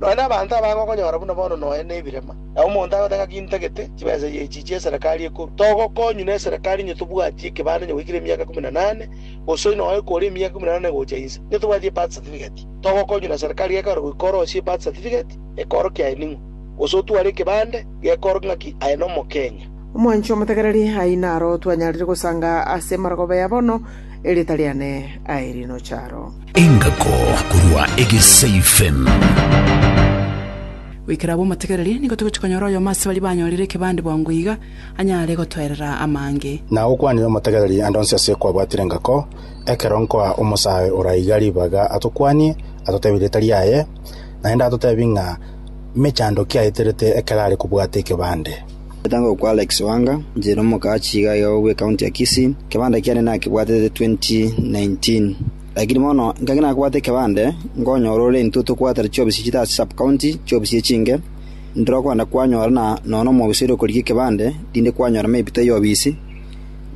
Nonya nabaanto aba ngokonyora buna bono noe nebirema, na omonto agote ng'aki intagete chibesa ye echichi eserekari ekoru, togokonywa neserekari inye tobwatie ekebande inye goikera emiaka ikomi na nane, gose noe ekore emiaka ikomi na nane gocha inse, inye tobwatie ebirth certificate, togokonywa neserekari gekore goika orosie ebirth certificate, ekorokia aye ning'o? Gose otware ekebande, gekorokia ng'aki aye nomokenya? Omwanchwa omotegereri, ayio naro twanyarire gosanga ase marogoba ya bono. Erieta riane aye rinocharo. Engako korwa egeseifen. Goikera abwo omotegereri, nigo togochia konyora oyomo ase baria banyorire ekebande bwango iga, anyare gotoerera amange. Na gokwanire omotegereri ande onsi ase kwabwatire engako, ekero nkoa omosae ora iga ribaga atokwanie, atotebe erieta riaye, naende atotebi ng'a mechando ki aeterete ekero are kobwata ekebande. Gotanga okwo Alex Wanga, injera omokaachi iga iga bwe county ya Kisii, ekebande kiane nakebwatete 2019. Lakini bono ngaki nakobwate ekebande, nkonyora ore intwe tokobwatera chiobisi chire ase sub county, chiobisi echinge, ndire okonda kwanyora na nonya nomobisa oria okorigia ekebande, rinde kwanyora maybe taiyo obisi,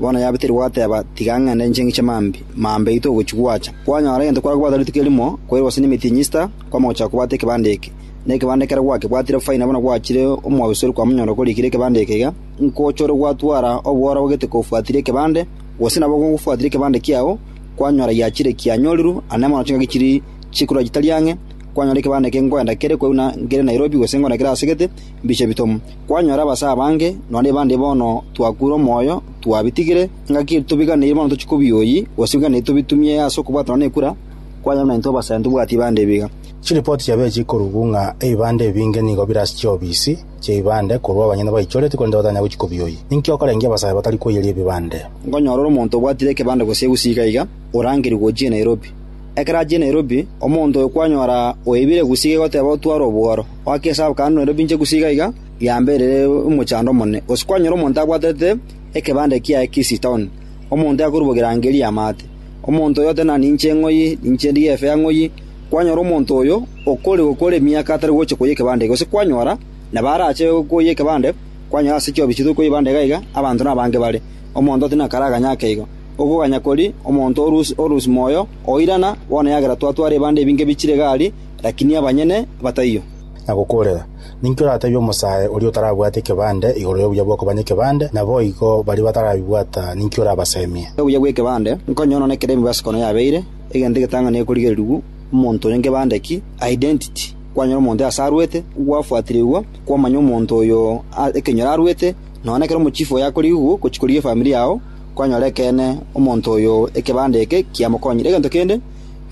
bono yaba teri gwateba tiga ngende inche ngiche mambi, mambi aito ogochi gwacha. Kwanyora egento kware kobwata rituko erimo, kwaire gose nemeeting Easter, kwama gochaka kobwata ekebande eke. na ekebande ekero gwakebwatire faina buna gwachire omobabisoria kwa monyoro korikire ekebande eke iga, nkochore gwatwara obworo ogete kobwatire ekebande, gose nabo gobwatire ekebande kiao, kwanyora giachire kianyorirwe, aa nemono chingaki chiri chikorwa chitari ang'e, kwanyora ekebande eke nkoenda kere korwa buna nkere Nairobi gose nkoenda kere asegete, mbiche bitomo. Kwanyora abase abange, nonya bande bono twakure omoyo, twabitigire, ngaki tobiganeiri bono tochie kobioyi, gose biganeiri tobitumie ase okobwatana nekura, kwanyora buna intwe abasaya ntobwati bande ebiga. Chiripoti chiabechi ikorugwu ng'a ebibanda ebinge nigo bire ase chiobisi chi'ebibande korwa abanyene baichoreti korende batanya gochia kobioyia. Ninki okorengia abasae batari koiyeria ebibande? Nkonyora ore omonto obwatire ekebande gose egusii iga iga, orangerigwe ochie Nairobi. Ekero achire Nairobi, omonto oyo kwanyora oibire egusii iga iga oteba otware obworo. Oake esabu kare nde Nairobi inche egusii iga iga, yambe ere omochando omonene. Gose kwanyora omonto abwatete ekebande kiaye Kisii town, omonto yakorubogera ngerie amaate. Omonto oyo oteba nani inche ng'oyi, ninche ndigefe ang'oyi. Kwanyora omonto oyo okore gokora emiaka atari gocha koyia ekebande, gose kwanyora nabo arache koyia ekebande, kwanyora ase chiobi chituri koyia ebande iga iga abanto nabange bare, omonto tari nakaraganya ake igo. Okoganya kori omonto orusi moyo oirana, bono eagera twatwara ebande ebinge bichire gari, lakini abanyene bataiyo. Na gokoorera, ninki oratebie omosae oria otarabwate ekebande igoro y'obuya bw'okoba nekebande? Naboigo baria batarabibwata ninki orabasemie? Obuya bw'ekebande, nkonye onone kera emibaso kono yabeire, Egento egetang'ani gekorigererigwa, omonto oyo ngebande ki, identity. Kwanyora omonto iga ase arwete, gwafuatirigwa, kwamanya omonto oyo a- ekenyoro arwete, nonya nekero omochifu oye akorigigwa gochia korigia efamiri yao, kwanyora ekeene omonto oyo ekebande eke kiamokonyire. Egento kende,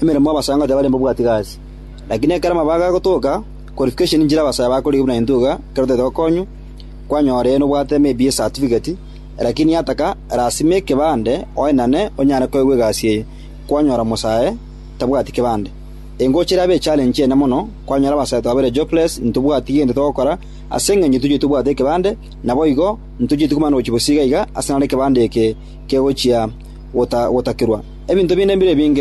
emeremo abasangoti abarenge mbabwati iga aase. Lakini ekero amabaga agotoka, qualification nchire abasaya bakorigia buna intwe iga, ekero totaete gokonywa, kwanyora eeno obwate maybe ecertificate, lakini yataka lasima ekebande oenane onyare koegwa egasi eye. kwanyora mosae tabwati kebande. Engocha erabe echallenge ene mono kwanyora abasae twabeire jobless ntobwati gento togokora ase engencho tochire tobwate ekebande naboigo ntochire tikomana gochia bosiga iga ase naro ekebande eke kegochia gota gotakirwa. Ebinto binde mbire binge.